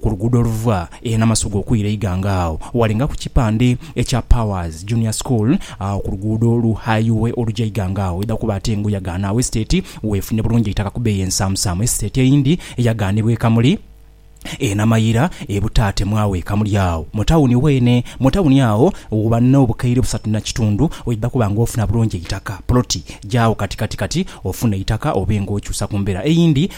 Ku luguudo oluva e Namasuga okwira e Iganga agho walinga ku kipande ekya Powers Junior School agho ku luguudo lu Highiwe oluja Iganga agho wedha kuba ate ng'oyagaana agho esiteeti weefune bulungi eitaka ku bbeeyi ensaamusaamu. Esiteeti eyindi eyagaanibwa e Kamuli e Namayira e Butaate mwagho e Kamuli agho mu tawuni weene. Mu tawuni agho ghuba n'obukaire busatu na kitundu weidha kuba ng'ofuna bulungi eitaka, poloti. Jaagho kati kati kati ofune eitaka obe ng'okyusa ku mbeera eyindi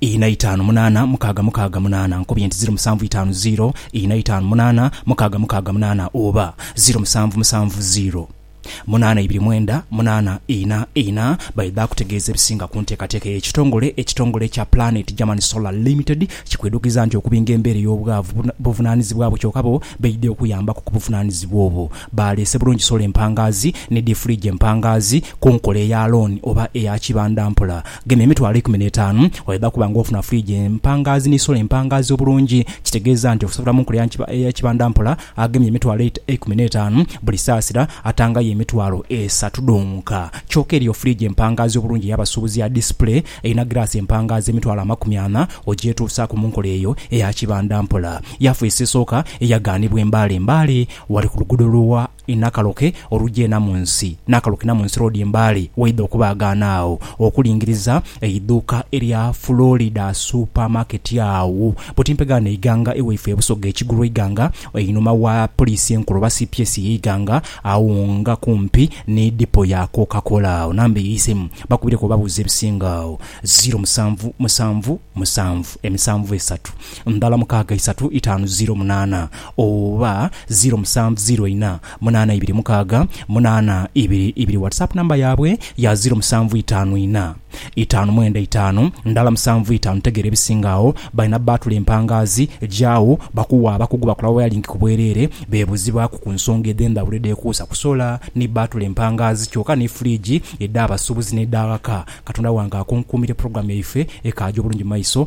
ina itaanu munaana mukaaga mukaaga munaana nkubye nti ziro musanvu itaanu ziro ina itaanu munaana mukaaga mukaaga munaana oba ziro musanvu musanvu ziro munaana ibiri mwenda munaana ina ina baidha kutegeeza ebisinga ku nteekateeka eyo. Ekitongole ekitongole ekya Planet German Solar Limited kikwidhukiza nti okubinga embeera ey'obwavu buvunaanizibwa bwo kyoka bo baidha okuyambaku ku buvunaanizibwa obwo. Baaleese bulungi sola empangaazi ni diifuligi empangaazi ku nkola eya looni oba eya kibandampola. Gema emitwalo eikumi n'etaanu oidha kuba nga ofuna fridge empangaazi ni solar empangaazi obulungi. Kitegeeza nti okusasula mu nkola eya kibanda mpola agemye emitwalo eikumi n'etaanu buli saasira atangayo emitwalo esatu dhonka. Kyoka eriyo fridge empangaazi obulungi ey'abasuubuzi ya display erina giraasi empangaazi emitwalo amakumi ana ogyetuusaaku mu nkola eyo eya kibanda mpola. Yafeesi esooka eyagaanibwa e Mbale Mbale wali ku luguudo lwa. Inakaloke olugyena mu nsi, nakaloke na mu nsi roodi embaale waidha okubaagaana agho okulingiriza eidhuuka erya Florida Supermarket agho buti mpegaano eighanga ewaifwe ebusoga ekigulu eighanga einhuma wa Poliisi enkulu oba cps ye ighanga agho nga kumpi ni dipo ya Coca Cola agho namba eisemu bakubireku obabuuze ebisinga agho ziro musanvu musanvu musanvu emisanvu esatu. Ndala mukaaga isatu itaanu ziro munaana oba ziro musanvu ziro ina munaana ibiri mukaaga munaana ibiri ibiri WhatsApp number yabwe ya ziro musanvu itaanu ina itaanu mwenda itaanu ndala musanvu itaanu tegeera ebisinga agho balina bbaatula empangaazi gyagho bakuwa abakugu bakola wayalingi ku bwereere beebuzibwaku ku nsonga edhendhawulo edhekuusa ku sola ni bbaatula empangaazi kyoka ni fridge edha basubuzi n'edha ghaka Katonda wange akunkuumire program yaife ekaaje obulungi mu maiso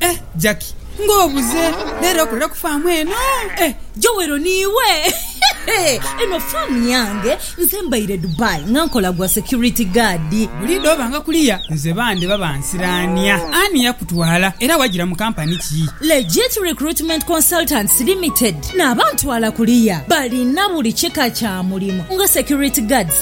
Eh Jackie nga obuze lero okolera ku faamu eno eh. Joel ni iwe eno faamu yange nze mbaire Dubai nga nkola gwa security guard. Buli dhoobanga kuliya nze bande baba nsiraania. Ani yakutwala era wajira mu kampani ki? Legit Recruitment Consultants Limited, n'abantwala kuliya balina buli kika kya mulimu nga security guards,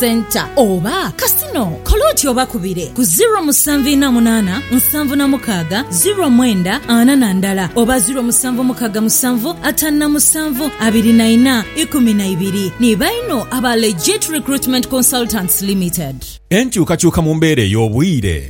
Centre oba Casino, kola oti obakubire ku ziro musanvu ina munana nsanvu na mukaga ziro mwenda ana na ndala oba ziro musanvu mukaga musanvu atanu na musanvu abiri na ina ikumi na ibiri. Ni baino aba Legit Recruitment Consultants Limited. Enkyukakyuka mu mbeera ey'obwire.